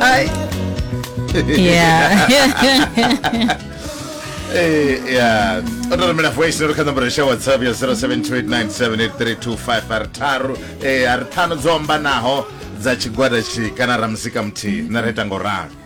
Ay. Yeah. Eh, yeah. o to romela voice note kha nomboro ya whatsapp ya 0728978325 a ri tharu eh, a ri ṱhanu dzo ombanaho dza tshigwada tshi kana ra musika muthihi na ri ita ngo ralo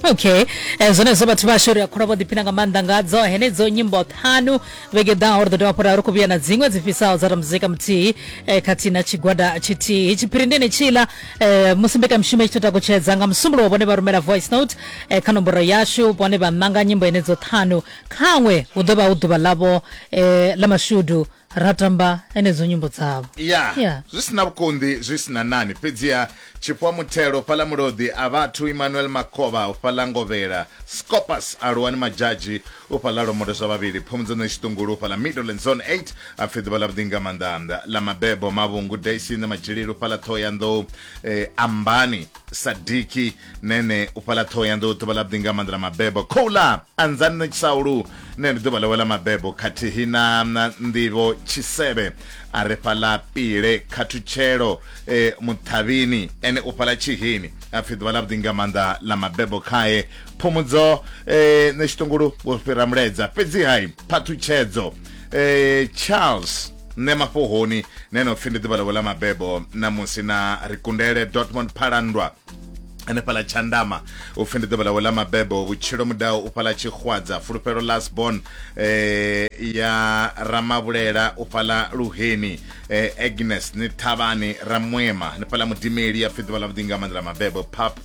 okay eh, zwenezwo vhathu vhashu ri a khula vho ḓiphina nga maanḓa ngadzo henedzo nyimbo ṱhanu vhege ḓaho ri ḓo dovha fhura ri khou vhuya na dziṅwe dzi fisaho dza ra muzika muthihi eh, khathihi na tshigwada tshithihi tshiphiri ndi ne tshila Eh, musi mbekamishumo i tshi takutshedza nga musumbulo vhone vha rumela voice note eh, kha nomboro yashu vhone vha ṋanga nyimbo enedzo ṱhanu khaṅwe hu ḓo vha hu ḓuvha ḽavho eh, ḽa mashudu ra tamba enedzo nyimbo dzavho ya yeah. zwi sina vhukonḓi zwi sina nani fhedziha tshifhiwa muthelo fhaḽa muloḓi a vhathu emmanuel makovha u fhaḽa ngovhela scopus aluwani madzhadzhi U fhaḽa lwambo zwa vhavhili Phumudzano ya Tshiṱungulu fhaḽa Midlands Zone 8 a pfi ḓuvha ḽavhuḓi nga maanḓa ḽa mabebo Mavhungu Daisy na Matshilele u fhaḽa Ṱhohoyanḓou e, Ambani Sadiki Nene u fhaḽa Ṱhohoyanḓou ḓuvha ḽavhuḓi nga maanḓa ḽa mabebo Khouḽa Anzani Tshaulu Nene ndi ḓuvha ḽawe ḽa mabebo khathihi na Nḓivho Tshisevhe a re fhaḽa Pile Khathutshelo e, Muṱhavhini ene u fhaḽa Tshihini a pfi ḓuvha ḽavhuḓi nga maanḓa ḽa mabebo khae phumudzo eh, nṋe tshiṱungulu vho fhira mulaedza fhedzi hai phathutshedzo eh, charles nṋe mafhohoni ne no pfi ndi ḓuvha ḽavho ḽa mabebo namusi na ri kundele dortmund phalandwa hanefhala tshandama u pfi ndi ḓuvha ḽawe ḽa mabebo vhutshilo mudau u fhala tshixwadza fulufhelo lasbon eh, ya ramavhulela u fhala luheni eh, agnes ni thavhani ramwema hanefhala mudimeli ya pfi ḓuvha ḽavhuḓi nga maanḓa ḽa mabebo pap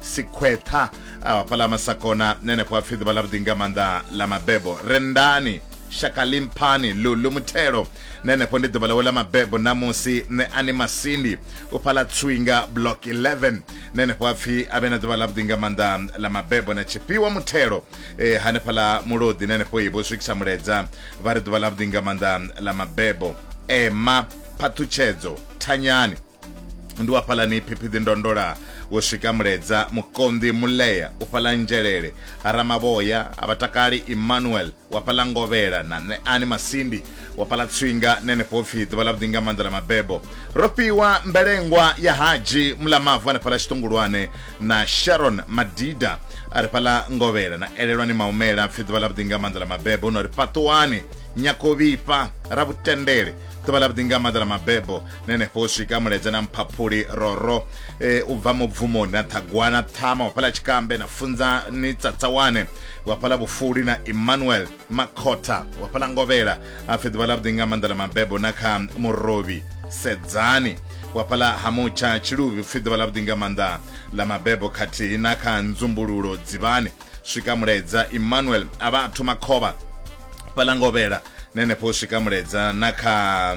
sikhweṱha a vha fhaḽa masakona nenefho hapfi ḓuvha ḽa vhuḓi nga maanḓa ḽa mabebo rendani shaka limphani lulu muthelo nenefho ndi ḓuvha ḽawe ḽa mabebo ṋamusi nṋe ani masindi u fhaḽa tswinga block 11 nenefho hapfi a vhe na ḓuvha ḽa vhuḓi nga maanḓa ḽa mabebo na tshifhiwa muthelo e, hanefhaḽa mulodi nenefho ibo swikisa muledza vha ri ḓuvha ḽa vhuḓi nga maanḓa ḽa mabebo ema phaṱhutshedzo thanyani ndi wa fhalani phiphiḓi ndondola wo swika muledza mukonḓi mulea u fhala nzhelele haramavhoya a vhatakali emmanuel wa fhala ngovhela na ṋeani masindi wa fhala tswinga nenefho pfhi ḓuvha ḽa vhuḓi nga maanḓa ḽa mabebo ro fhiwa mbelengwa ya haji mulamavu ane fhala tshiṱungulwane na sharon madida a ri fhala ngovhela na elelwani maumela pfhi ḓuvha ḽa vhuḓi nga maanḓa ḽa mabebo no ri fhaṱuwani nyakovhifha ravhutendele ḓuvha ḽa vhuḓinga maḓa ḽa mabebo na henefho u swika muledza na mphaphuli roro e, u bva mubvumoni na ṱhagwana ṱhama wa fhaḽa tshikambe na funzani tsatsawane wa fhaḽa vhufuli na emmanuel makhotha wa fhaḽa ngovhela a pfi ḓuvha ḽa vhuḓinga maḓa ḽa mabebo na kha murovhi sedzani wa fhaḽa ha mutsha tshiluvhi pfi ḓuvha ḽa vhuḓinga maanḓa ḽa mabebo khathihi na kha nzumbululo dzivhani swika muledza emmanuel a vha a thoma khovha fhaḽa ngovhela na henefho u swika muledza na kha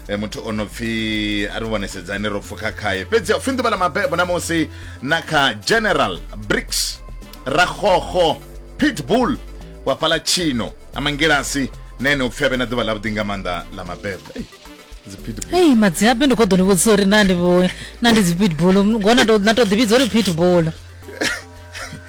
eh, muthu o no pfi a ri vhonesedzani ro pfukha khaye fhedzi a u pfi nḓuvha ḽa mabebo na musi na kha general bricks ragogo pitbull wa fhaḽa tshino a mangilasi na ene u pfi a vhe na ḓuvha ḽavhuḓi nga maanḓa ḽa mabebo Ei, dzi pitbull ei madziabe ndi kho ḓo ni vhudzisa uri na ndi vho na ndi dzi pitbull ngona to- na to ḓi vhidza uri pitbull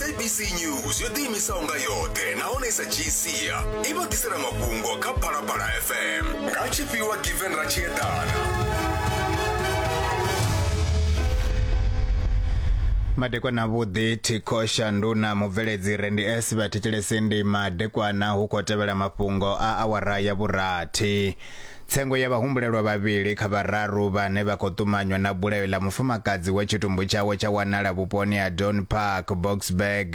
sabc news yo ḓiimisaho nga yoṱhe nahone i sa dzhii sia i vha ḓisela mafhungo kha phalaphala fm nga tshifhiwa given ra tshi eḓana madekwana vhuḓi thikho shanduna mubveledzi re ndi s vha thetshelese ndima dekwana hu khou tevhela mafhungo a awara ya vhurathi Tsengo ya vhahumbulelwa vhavhili kha vhararu vhane vha khou ṱumanywa na bulayo ḽa mufumakadzi we tshitumbu tshawe tsha wanala vhuponi ha Don Park, Boksburg,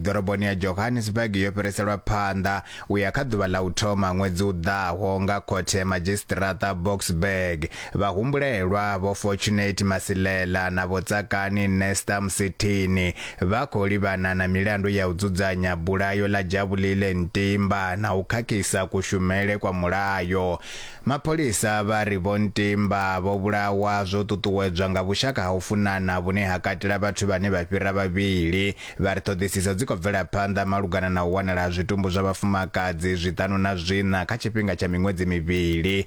ḓoroboni ya Johannesburg yo fhiriselwa phanḓa u ya kha ḓuvha ḽa u thoma ṅwedzi u ḓaho nga khothe ya madzhisiṱiraṱa Boksburg. Vhahumbulelwa, Vho Fortunate Masilela na Vho Tsakani Nesta Musithini, vha khou livhana na milandu ya u dzudzanya bulayo ḽa Jabulile Ntimba na u khakhisa kushumele kwa mulayo. Mapholisa vha ri Vho Ntimba vho vhulawa zwo ṱuṱuwedzwa nga vhushaka ha u funana vhune ha katela vhathu vhane vha fhira vhavhili. Vha ri ṱhoḓisiso dzi khou bvela phanḓa malugana na u wanala ha zwitumbu zwa vhafumakadzi zwiṱanu na zwiṋa kha tshifhinga tsha miṅwedzi mivhili.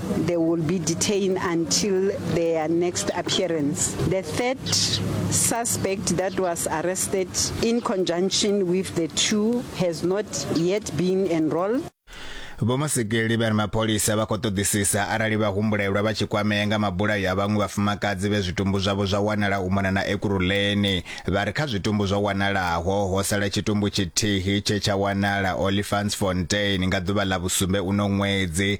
They will be detained until their next appearance. The third suspect that was arrested in conjunction with the two has not yet been enrolled. vho masekeli vha ri mapholisa vha khou ṱoḓisisa arali vha humbulelwa vha tshi kwamea nga mabulayo a vhaṅwe vhafumakadzi vhe zwitumbu zwavho zwa wanala u mona na ekuruleni vha ri kha zwitumbu zwo wanalaho ho sala tshitumbu tshithihi tshe tsha wanala olifantsfontein nga ḓuvha ḽa vhusumbe uno ṅwedzi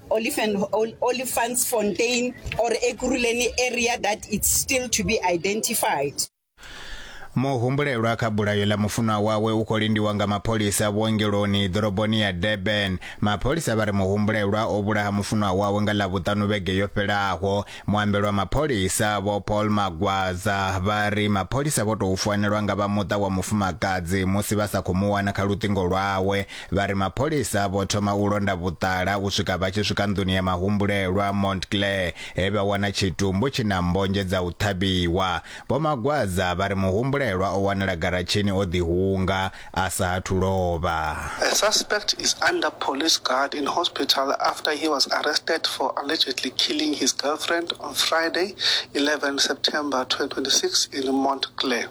Olifantsfontein or Ekurhuleni area that it's still to be identified. Muhumbulelwa kha bulayo ḽa mufunwa wawe u khou lindiwa nga mapholisa vhuongeloni ḓoroboni ya Durban. Mapholisa vha ri muhumbulelwa o vhulaha mufunwa wawe nga Ḽavhuṱanu vhege yo fhelaho. Muambeli wa mapholisa Vho Paul Magwaza vha ri mapholisa vho tou founelwa nga vha muṱa wa mufumakadzi musi vha sa khou mu wana kha luṱingo lwawe Vha ri mapholisa vho thoma u londa vhuṱala u swika vha tshi swika nḓuni ya mahumbulelwa Montclair he vha wana tshitumbu tshi na mmbonzhe dza u ṱhavhiwa. Vho Magwaza vha ri muhumbulelwa o wanala garatshini o ḓihunga a sa athu lovha. The suspect is under police guard in hospital after he was arrested for allegedly killing his girlfriend on Friday, 11 September 2026 in Montclair.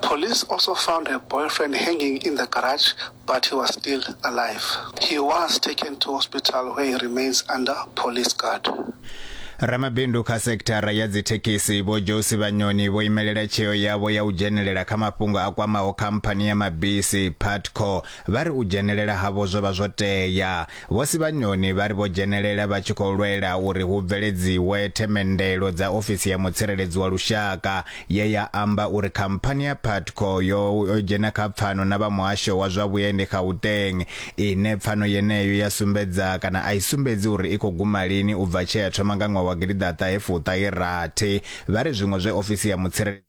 Police also found her boyfriend hanging in the garage but he was still alive. He was taken to hospital where he remains under police guard. Ramabindu kha sekithara ya dzithekhisi Vho Josi Vhanyoni vho imelela tsheo yavho ya u dzhenelela kha mafhungo a kwamaho khamphani ya mabisi Putco vha ri u dzhenelela havho zwo vha zwo tea. Vho Sibanyoni vha ri vho dzhenelela vha tshi khou lwela uri hu bveledziwe themendelo dza ofisi ya mutsireledzi wa lushaka ye ya amba uri khamphani ya Putco yo dzhena kha pfano na vha muhasho wa zwa vhuendi Gauteng ine pfano yeneyo ya sumbedza kana a i sumbedzi uri i khou guma lini u bva tshe ya thoma nga ṅwaha wa gidi ḓa ṱahe fuṱahe rathi vha ri zwiṅwe zwe ofisi ya mutsireledzi